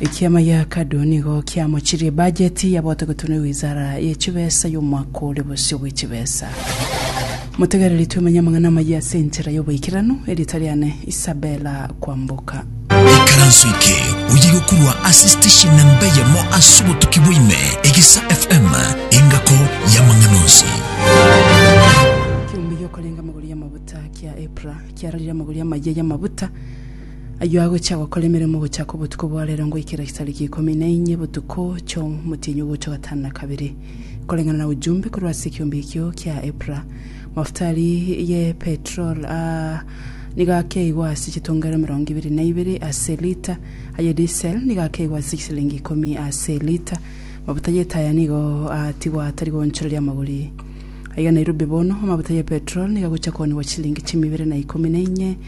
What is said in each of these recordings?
Ekiama gia Kadu nigo kiamochirie ebajeti ya gotegotenwa ye wizara ye chibesa y'omwaka ore bosio bwe chibesa. Motegereri twemenye amang'ana amayia ase enchera y'oboikeranu, erieta riane Isabella Kwamboka. Ikaranso eke oye gokurwa ase station namba eyemo ase obotuki bwaime, Egisa FM, engako y'amang'ana onsi. Kiumbe giokorenga amagoro y'amabuta kia Epra kiararire amagoro y'amayia y'amabuta, Ayio agochia gokora emeremo gochaka obotuko bwa reero ngoikera chitariki ikomi na inye botuko chi'omotienyi ogocha ogatano na kabere, koreng'ana na ujumbe korwa ase ekiombe ekio kia epura. Mafutari ye petrol aa nigo akeigwa ase chitongero emerongo ebere na ibere ase elita, aye diesel nigo akeigwa ase chisilingi ikomi ase elita. Mafuta y'etaya nigo aatigwa atari goonchoreria amagori. Aiga Nairobi bono, amafuta ye petrol nigo agochia koonigwa chisilingi chi'emeibere na ikomi na inye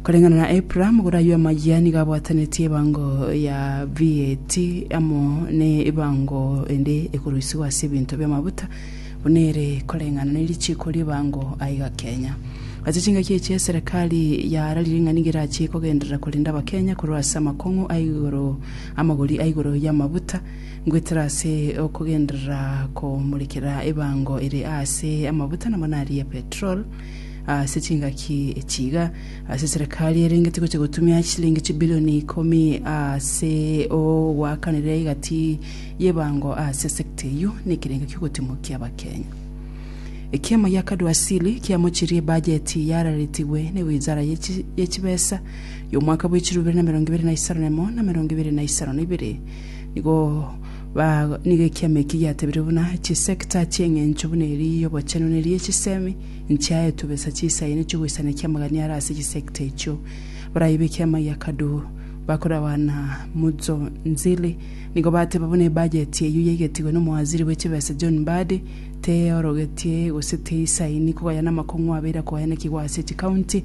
Koreng'ana na Abraham, gora ayio amayia nigo abwatanetie ebango ya VAT amo nebango ende ekoroisigwa ase ebinto bi'amabuta, buna ere koreng'ana ne richiiko ri'ebango aiga Kenya. Ase chingaki echi eserekari yararire ng'a nigo erachie kogenderera korenda Abakenya korwa ase amakong'u aigoro amagori aigoro y'amabuta ngoetera ase okogenderera komorekera ebango ere aase amabuta namo naria ya petrol ase chingaki echi iga, ase eserekari erengeti gocha gotumia chilingi chibilioni ikomi ase ogoakanera egati y'ebango ase esekta eyio na ekerengo ki'ogotimokia abakenya. Ekiama gia Kadwasili kiamochirie ebajeti yararetigwe ne wizara ye chibesa y'omwaka bw'echiro ibere na emerongo ibere na isano na emo na emerongo ibere na isano na ibere nigo Baago nigo ekiama eki giatebire buna chisecta chi'engencho buna eria y'obochenu ne eria y'echisemi, nchiaetwe besa chisaia ne chiogoisanekia amagania are ase chisecta echio. Barai b'ekiama gia Kaduhu, bakorawa na Mudzo Nzili, nigo bateba buna ebajeti eyio yaigetigwe n'omowaziri bwe chibesa John Mbadi teyorogetie gose teisaini kogayana amakong'u abeire akoayanekigwa ase chikaunti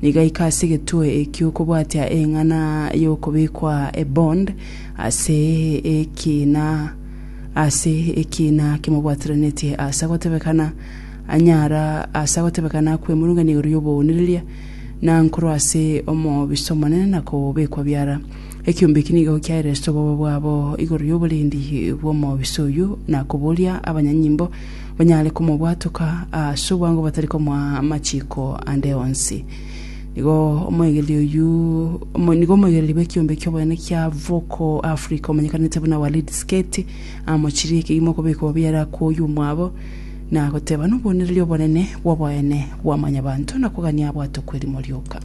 Nigaika ase egetwe ekio okobwatia eng'ana y'okobekwa ebond ase ekiina ase ekiina kimobwateranetie ase agotebekana, anyara ase agotebekana kwemurungania igoro y'obounireria, na nkorwa ase omobisa omonene na kobekwa biara. Ekiombe eki nigo kiaire ase obobe bwabo igoro y'oborendi bw'omobisa oyio, na koboria abanyanyimbo, Onyare komobwatoka ase obwango batari komoa amachiiko ande onsi. Nigo omoegereria oyio, omo- nigo omoegereria bw'ekiombe ki'oboene kia Voco Africa omanyekanete buna Walid Sketi amochirie ekegima okobeka obobe yare akwo oyio omwabo na goteba nobonereria obonene bw'oboene bwa mwanyabanto na kogania abwatokwe erimo rioka.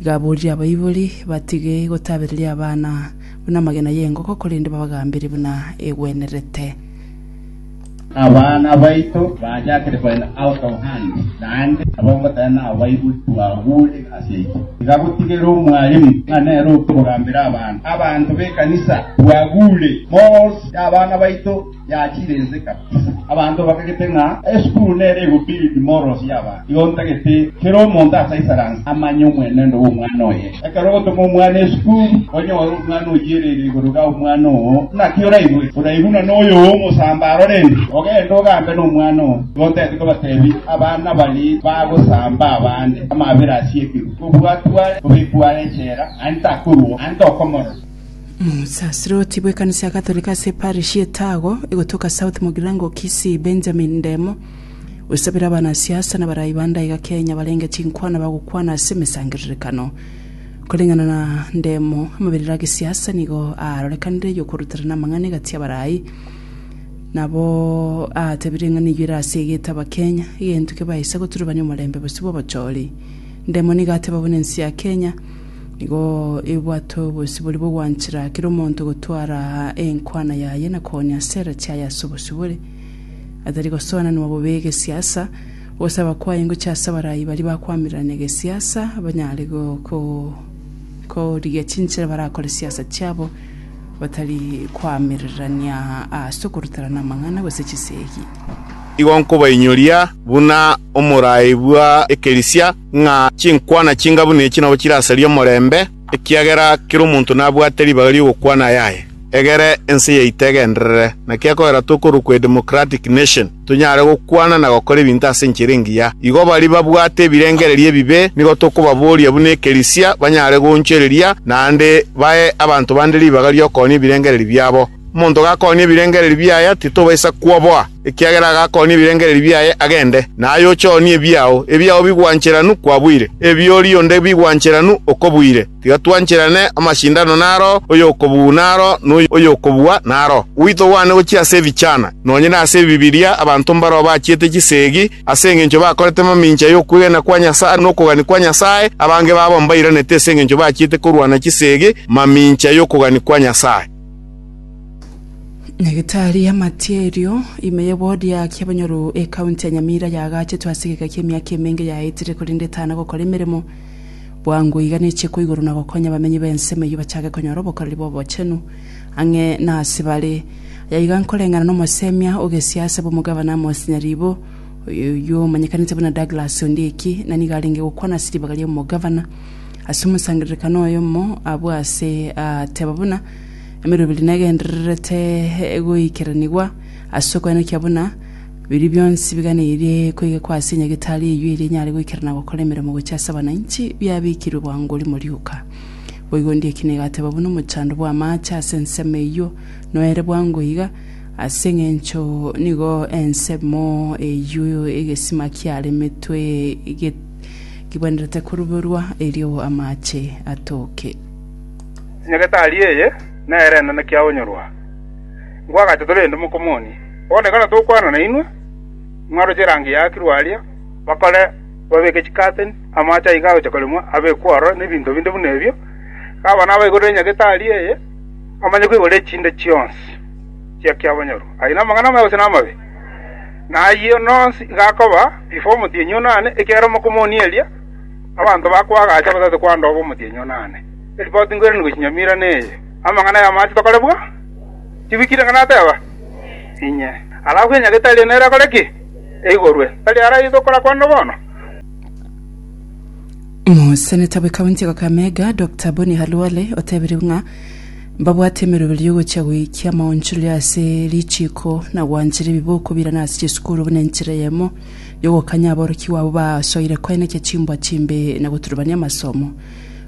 Iga aboririe abaibori batige gotabereria abana buna amagena y'engoko, korende babagambere buna egwenerete. Abana baito baachakire koenda out of hand, naende abwo ngotae nao baibori tibagure ase aitwe. Iga gotigere omwalimu ng'a nere oke ogambere abana. Abanto b'ekanisa, tibagure morals y'abana baito. Yachire ense kabisa. Abanto bakagete ng'a esukuru nere egobuild morals y'abanto. Igo ntagete kera omonto ase isaranse amanye omwenendo bw'omwana oye. Ekero ogotoma omwana esukuru, onyore omwana oyiereri igoro ga omwana oo, naki oraigwe? Oraigwe buna noyo omosamba arorende. Ogende ogambe nomwana oo, igo ntagete kobatebi abana baria bagosamba abande, amabera ase ekeru, obwatwe are, obekwe are echela, naende takorua, naende tokomorora. Omosaserdoti bw'ekanisa ya Gatorika ase eparish y'Etago, egotoka South Mugirango, Kisii, Benjamin Ndemo, osabire abanasiasa na barai ba ndaiga Kenya barenge chinkwana bagokwana ase emesangererekano. Koreng'ana na Ndemo, amabirire a gesiasa nigo aarorekanire y'okoruterana amang'ana egati y'abarai nabo aatebire ng'a neyio ere ase egeto Abakenya, egento kebaisa goturubania omorembe bosio bw'obochori. Ndemo nigo ateba buna ense ya Kenya, Nigo ebwate obosibori bw'ogwanchera kera omonto gotwara enkwana yaye na koonia asera chiaye ase obosibori, atari gosoananwa bobe egesiasa. Ogosaba kwaye ngochie ase abarai baria bakwamirirana egesiasa, banyare korigia chinchera barakore siasa chiabo batari koamirirania ase okoruterana amang'ana gose chisegi. Igo nkobainyoria buna omoraai bwa ekerisia. ng'a chinkwana chingabu nechi nabo chirasaria omorembe, ekiagera kera omonto nabwate ribaga ri'ogokwana ayaye. Egere ense yaito egenderere, naki ekogera tokorokwa a democratic nation, tonyare gokwana na gokora ebinto ase enchera engiya. Igo baria babwate ebirengererio ebibe nigo tokobaboria buna ekerisia banyare goonchoreria naende bae abanto bande ribaga ri'okoonye ebirengererio biabo. Omonto gakoonia ebirengererio biaye titobaisa kwoboa, ekiagera agakoonia ebirengererio biaye agende, na aye oche oonie ebiao. Ebiao bigwancheranu kwabuire, ebi'oria onde bigwancheranu okobuire. Tiga twancherane, amashindano naro, oyokobuu naro, na oyokobua naro. Gwaito gwane gochia ase ebichana. Nonye nase Ebibilia, abanto mbarao bachiete chisegi, ase engencho bakorete mamincha y'okwegena kwa Nyasae na okogania kwa Nyasae, abange babo mbairanete ase engencho bachiete korwana chisegi mamincha y'okogania kwa Nyasae. Nyagetari y'amatia erio, ime ye bodi ya Aki Abanyoru ekaunti ya Nyamira yaagachetwe ase egeka ki'emiaka emenge yaetire korende etana gokora emeremo bwango iga ne chiiko igoro na gokonya abamenyi b'ensemo eyio bachake konyora obokoreri bw'obochenu ang'e na ase bare. Aya iga nkoreng'ana n'omosemia o gesiasa bw'omogavana Amos Nyaribo oyio omanyekanete buna Douglas Ondieki na nigo arenge gokwana ase ribaga ri'omogavana Ase omosangererekano oyomo abwo aase aateba buna emeroberi negendererete goikeranigwa ase okoenekia buna biria bionsi biganeirie koigekwa ase enyagetari eyio eria enyare goikerana gokora emeremo gochia ase abananchi biabekirwe bwango rimo rioka. Boigo ndie ekina egateba buna omochando bw'amaache ase ensemo eyio noere bwango iga, ase engencho nigo ensemo eyio egesima kiaremetwe Kigwenerete koruberwa erio amache atoke. Nyagetari eye nere enene kia onyorwa, Nkwagacha tore ende mokomoni. Bono ekero tokwana nainwe, mwaroche erangi yaakirwe aria bakore babeke chikateni, amache aiga agocha koremwa abekwe ororo, na ebinto binde buna ebio. Kaba nabaigorere Nyagetari eye, amanye koigora echinde chionsi chia kiabonyorwa. Aye namang'ana amaya gose namabe? na ayio nonsi igakoba ifo omotienyi one one, ekiagera mokomoni eria abanto bakoagacha gose tikwandoba omotienyi one one. Eripoti nkoiranie gochia nyamira neye. Amang'ana ay'amache tokore bwa? Tibikire ng'a nateba? Inye. Alafu enyagete eria nere akore ki? Eigorwe. Tari aro ayio tokora kwande bono? Moseneta bw'ekaunti ya Kakamega, Dokita Bonny Halwale otebirie ng'a Mbabwate emeroberio y'ogochia goikia amaonchoreria ase richiiko, na gwanchera ebiboko birana ase chisukuru buna enchera eyemo y'ogokanya aborokigwa abwo basoire koenekia chimbwa chimbe na goturubania amasomo.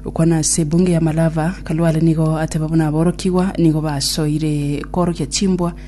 Gokwana ase ebunge ya Malava, Kalwale nigo ateba buna aborokigwa nigo basoire koorokia chimbwa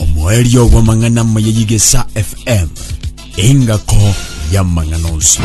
omoerio bw'amang'ana amaya y'Egesa FM, engako y'amang'ana onsi.